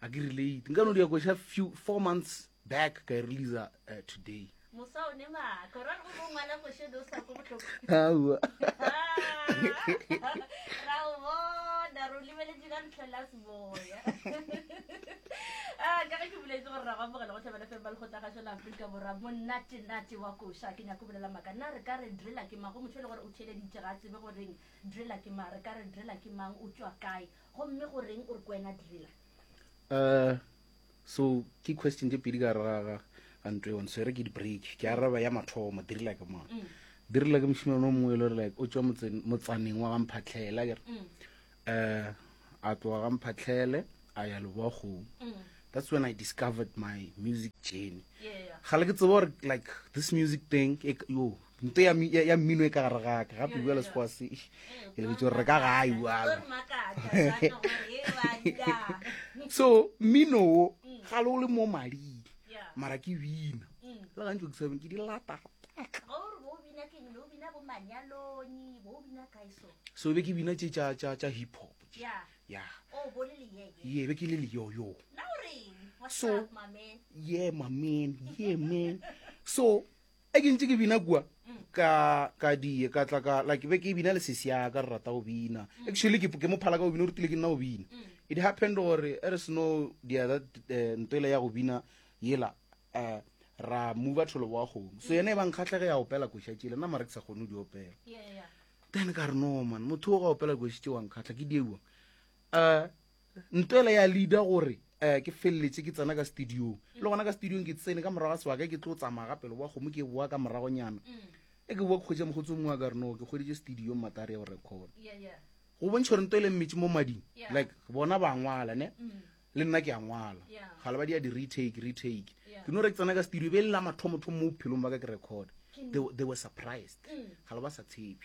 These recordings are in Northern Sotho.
a ke relate nka no di ya kwesha few four months back ka e release uh, eh, today mosa o ne maka ra go go ngwala go she do sa go botlhoko ha wa ra o bona ro libele di ka ntlo la seboya ah ka ke buletse gore ra go bogela go tlhabela fe ba le go tla ga shela Afrika borwa mo nate nate wa go sha ke nya go bulela maka na re ka re drela ke mago motho le gore o tshele di tshega tsebe go reng drela ke ma re ka re drela ke mang o tswa kae Gomme go reng o re kwena driller? Uh, so ke question tse pedi ka ra ga gantwe yone so e re ke di-break ke araba ya mathomo driller ke mona mm. driller ke mošimane o mongwe e le gore like o tswa motsaneng wa gamphatlhela kere um a tloga gamphatlhele a ya leboagong mm. that's when i discovered my music journey ga le ke tsebo gore like this music thing e, yo nto ya, ya, ya mmino e ka gare ga ka gape bjale sekgowa se ke lebetse gore re ka gae bjalo so mmino wo ga le o le mo mading mara ke bina le gantsi ke sabeng ke di lata so be ke bina tse tša tša tša hip hop ya ye be ke le leyoyo so ye mamen ye men so e ke ntse ke bina kua ka ka die ka tla ka like be ke bina le sesi ya ka re rata go bina actually ke ke mo phala ka go bina o rutile ke nna go bina it happened gore e re seno dia that eh, ntwele ya go bina yela eh, ra mova tholo wa kgomo so yena e bang kgatlhege ya opela koša tšele nna mare ke sa kgone go di opela then ka re no man motho o ga opela koši tse wang kgatlha ke diewa um Ntwele ya leader gore eh, ke feleletše ke tsena ka studiong. Le gona ka studiong ke tsene ka morago ga sebaka ke tlo tsamaya ga pelo wa kgomo ke boa ka moragonyana. E ke boa ke kgwetša mokgotsi o mongwe a ka re no ke kgweditše studiong matari ya go record. Go bontšha gore Ntwele mmetše mo mading. Like bona ba ngwala ne. Le nna ke a ngwala. Gale ba dia di retake, retake. Ke no re ke tsena ka studio be le la mathomo thomo mo bophelong ba ka ke record. They, they were surprised. Gale ba sa tshepe.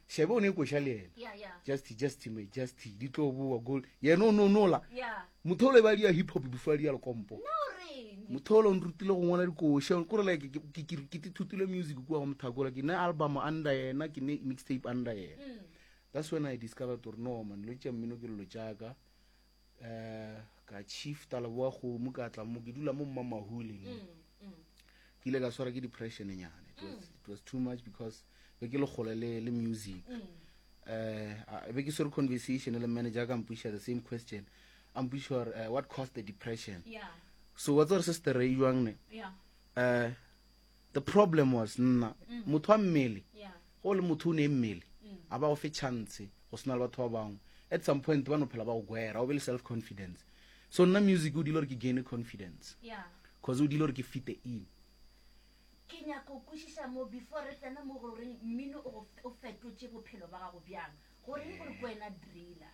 šabe o ne koša le yena yeah, yeah. just just me just di tlo boa gold yena o nonola yeah. motholo e ba di ya hip hop before di ya lekompo no, motholo o nrutile go ngwala dikoša kore like ke tithutile music kua go mothakola ke ne album under yena ke ne mixtape under yena mm. that's when i discovered gore no man lo tša mmino ke lelo jaaka eh ka chief taleboa kgomo ka tla mo ke dula mo mma mahule mm, mm. ke ile ka swara ke depression nyane it was, mm. it was too much because be ke le gole le, le music mm. uh, be ke swere conversation le manager ka mpuša the same question a mpuša gore uh, what caused the depression yeah. so wa tsere se se tereiwang ne yeah. uh, the problem was nna mm. motho wa mmele go le motho o ne mmele mm. a ba go fe chance go sena le batho ba bangwe at some point ba no phela ba go gwera o be le self confidence so nna music o dile gore ke gaine confidence cause o dile gore ke fite in ke nyaka o kwešiša mo before re tsena mo goreng mmino o fetotše bophelo ba gago bjang goreng gore ko wena driller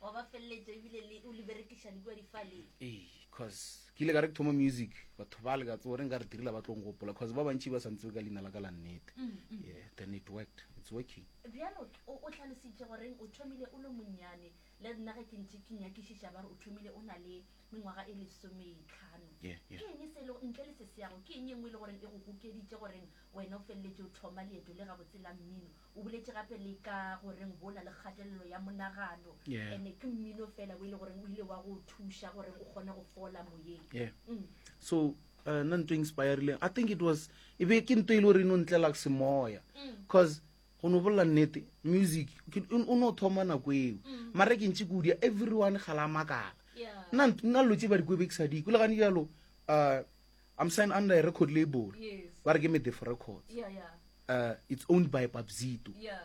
wa ba feleletša ebile le o le berekiša le kua difaleng ee cause ke ile ka re ke thoma music batho ba le ka tsore nka re direla ba tlong gopola cause ba bantši ba santse ka leina la ka la nnete mm, mm. yeah then it worked it's working bjalo o tlhalositše goreng o thomile o le monnyane le nna ge ke ntše ke nyakišiša ba re o thomile o na le mengwaga e lesometlhano ke eng e se le ntle le se seyago ke eng e nngwe e le goreng e go gokeditše goreng wena o feleletše o thoma leeto le gabotse la mmino O boletše gape le ka go reng go na le kgatelelo ya monagano, Yeah. ene ke mmino fela o e le goreng o ile wa go o thuša goreng o kgone go fola moyeng. yeah Mm. so uh, nna nto inspirileng i think it was e be ke nto e le gore e no ntlela ke semoya Mm. cause go no bolela nnete music ke- o o no thoma nako eo Mm. mara ke ntse kudia everyone ga la makala Yeah. nna nt- nna lo tse ba dikobe ke sa diko le gane jalo um I'm signed under a record label. Yes. Ba re ke Medefo Records. Yeah, yeah. Uh, it's owned by Papzito. Yeah.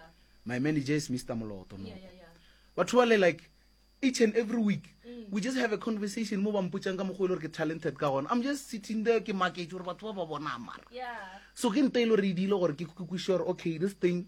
My manager is Mr. Moloto. Yeah, yeah, yeah. But truly, like, each and every week, mm. we just have a conversation mo ba mpotsang ka mogolo ke talented ka gona. I'm just sitting there ke market gore batho ba ba bona mara. Yeah. So ke nta ile re dile gore ke kukwishe gore okay, this thing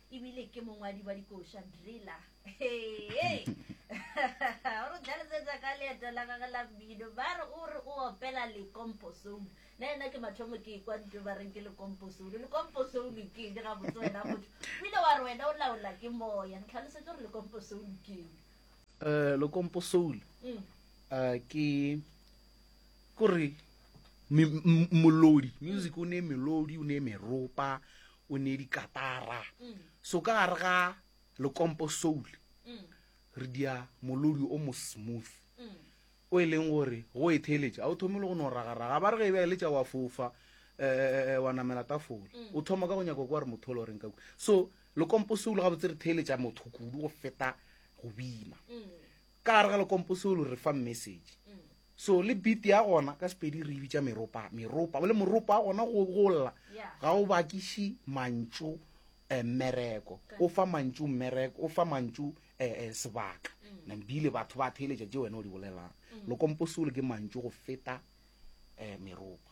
ebile ke mongwadi wa dikoša driller hee o re tlhalosetsa ka leeto la gage la mmino ba re o re o opela lekomposoulu na ena ke mathomo ke kwa nto ba reng ke lekomposoulu lekomposoulu ke eng ga botse wena motho o ile wa re wena o laola ke moya re tlhalosetsa gore lekomposoulu ke eng um eh, lekomposoulu um mm. eh, ke kore molodi music o ne melodi o ne meropa o ne dikatara so ka gare ga lekompo soul re dia molodi o mo smooth o e leng gore go e theletša ga o thome le go no ragaraga ba re ge e beeletša wa fofa um wa namela tafole o thoma ka go nyako kwa re motho o le goreng ka so lekompo soul ga botse re theletša motho kudu go feta go bina Ka gare ga lekompo seo lo re fa message. So le beat ya gona ka Sepedi re e bitša meropa, meropa. Bole moropa wa gona go go lla ga o bakiši mantšu eh, mmereko. O fa mantšu mmereko, o fa mantšu eh, eh, sebaka. Nam bile batho ba theeletša tše wena o di bolelang. Lekompo seo le ke mantšu go feta eh, meropa.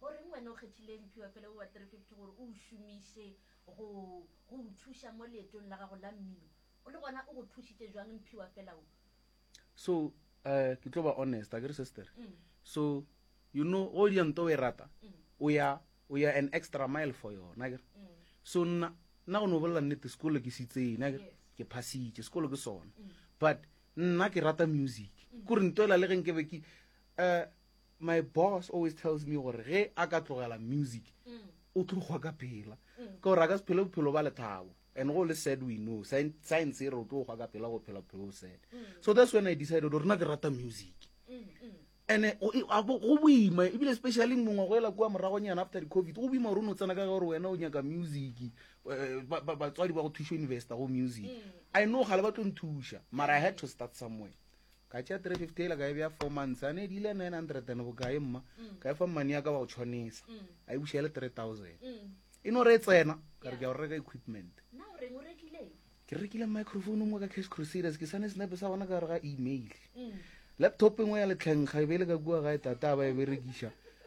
Goreng wena o kgethile mphiwa fela wo wa 350 gore o o šomiše go go o thuša mo leetong la gago la mmino? O le gona o go thušitše bjang mphiwa fela wo? So, eh, ke tlo ba honest, akere sister? So, you know, go dira nto o e rata, o ya, o ya an extra mile for yona, akere? So, nna, nna go no bolela nnete, sekolo ke se itseng, akere? Ke phasitše, sekolo ke sona. But, nna ke rata music. Kore nto ela le ge nke be ke, eh, my boss always tells me gore ge a ka tlogela music mm. o tlo gwa ka phela mm. ka gore a ka se phele bophelo ba lethabo and go le sad we know science e re o tlo gwa ka phela go phela bophelo o sad mm. so that's when i decided gore na ke rata music and eh, go boima ebile especially mongwe go ela kua moragonyana after di-covid go boima gore o ne o tsena ka gore wena o nyaka music eh, batswadi ba go thuša university go music i know gale ba tlo nthuša mara i had to start somewhere Ka tšea three fifty ela ka e bea four months a ne di ile nine hundred and bokae mma ka e fa mmane ya ka wa go tshwanisa a e buša e le three thousand e no re e tsena ka re ke ya go reka equipment ke rekile microphone nngwe ka cash crusaders ke sane senepe sa gona ka gare ga email laptop engwe ya letlhenkga e be e le ka kua gae tata ba e berekiša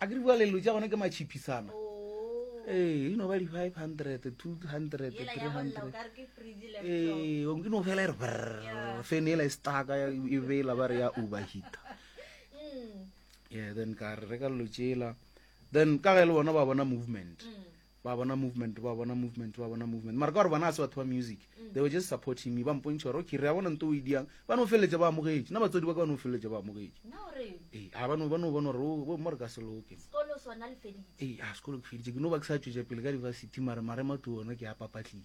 a ke dibua lelo tša gona ke matšhiphisana ee e no ba di-five hundred two hundred three hundred ee e no fela e re fene ela e staka e bela ba re ya overheater mm. yeah then ka re reka lelo tšela then ka ge le bona ba bona movement mm. ba bona movement ba bona movement ba bona movement mara ka gore bona a se batho ba music mm. they were just supporting me ba mpontšha gore okay re a bona nto o e diang ba no feleletša ba amogetše na batswadi ba ka ba no feleletša ba amogetše ee a ba no bona gore o mo re ka se loke ee a sekolo ke feditše ke no ba ke sa tšwetša pele ka diversity mare marema tu ona ke a papatlile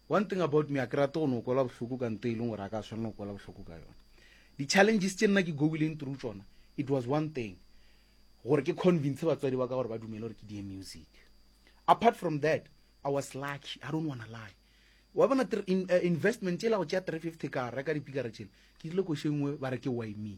One thing about me, a ke rate go no kwelwa bohloko ka nto e leng gore a ka swanela go kwelwa bohloko ka yona. Di challenges tše nna ke goileng through tšona, it was one thing, gore ke convince batswadi ba ka gore ba dumele gore ke die music. Apart from that, I was lucky, I don't wanna lie. Wa bona in, uh, investment e la go tšea 350 ka reka dipikara tšele, ke rile košengwe ba re ke why me.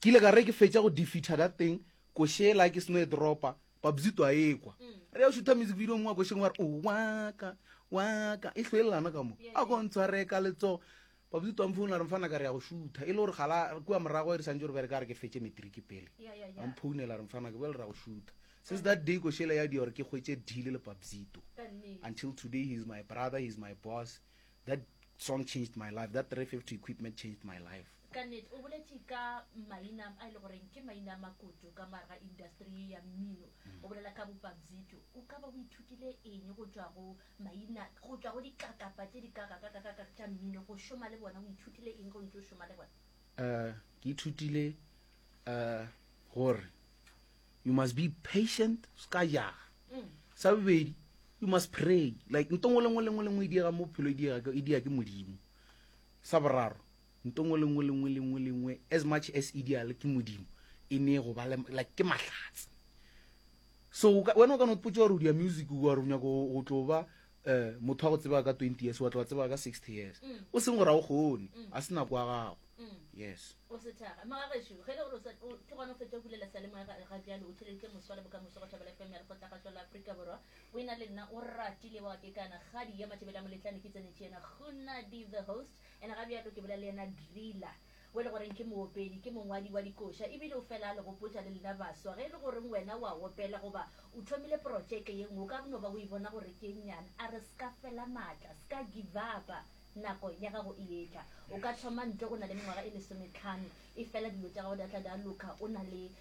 Ke ile ka re ge ke fetša go defeater that thing, koše ela ke seno e dropa, Babzito a ekwa. Re ya o shootha music video mongwe wa košeng wa re, o waka, waka, e hlwelelana ka mo. A ko ntshware ka letsogo. Babzito a mphounela a re, Mfana ka re ya go shootha. E le gore gala kua morago e re santše re bereka ya re ke fetše matric pele. A mphounela a re, Mfana ka bjale re ya go shootha. Since that day koše ela ya dira gore ke hwetše deal le Babzito. Until today he is my brother, he is my boss. That song changed my life, that 350 equipment changed my life. Ka nnete, o boletše ka maina a e le goreng ke maina a makutu ka moare ga industri ye ya mmino. O bolela ka bopabzito. O ka ba o ithutile eng go tšwa go maina, go tšwa go dikakapa tše dikakakakakaka tša mmino, go šoma le bona? O ithutile eng ge o ntše o šoma le bona? Ke ithutile gore You must be patient, ska jaga. Sa bobedi, you must pray. Like ntongo lengwe lengwe lengwe e diega mo phelo e diega e diega ke modimo. Sa boraro, ntongo lengwe lengwe lengwe lengwe as much as e diale ke modimo e ne go ba like ke mahlatse. So wena o ka no potsa gore o dia music o gore o nyaka go tlo ba um motho wa go tsebaka ka twenty years wa tla wa tsebaka ka sixty years o seng gore ga o kgone a se nako ya gago yes o sethaga magagešu ge le gore o sa- o- ke gona o fetša bulela salemoya ga ga bjalo o theleditše moswa le bokamoso go thabela fm ya lekgotlagatšwa la aforika borwa o e na le nna o ratile wa kekana kgadi ya matšebele a moletlane ke tsenetše yena gonadi the host ene ga bjalo ke bolela le yena driller O e le goreng ke moopedi, ke mongwadi wa dikoša e bile o fela a le gopotša le lena baswa. Ge e le goreng wena o a opela goba o thomile protšeke ye nngwe, o ka no ba o e bona gore ke e nnyane. A re se ka fela matla, se ka givapa. Nako ya gago e etla. O ka thoma ntlo o na le mengwaga e lesometlhano, efela dilo tša gago di a tla di a loka o na le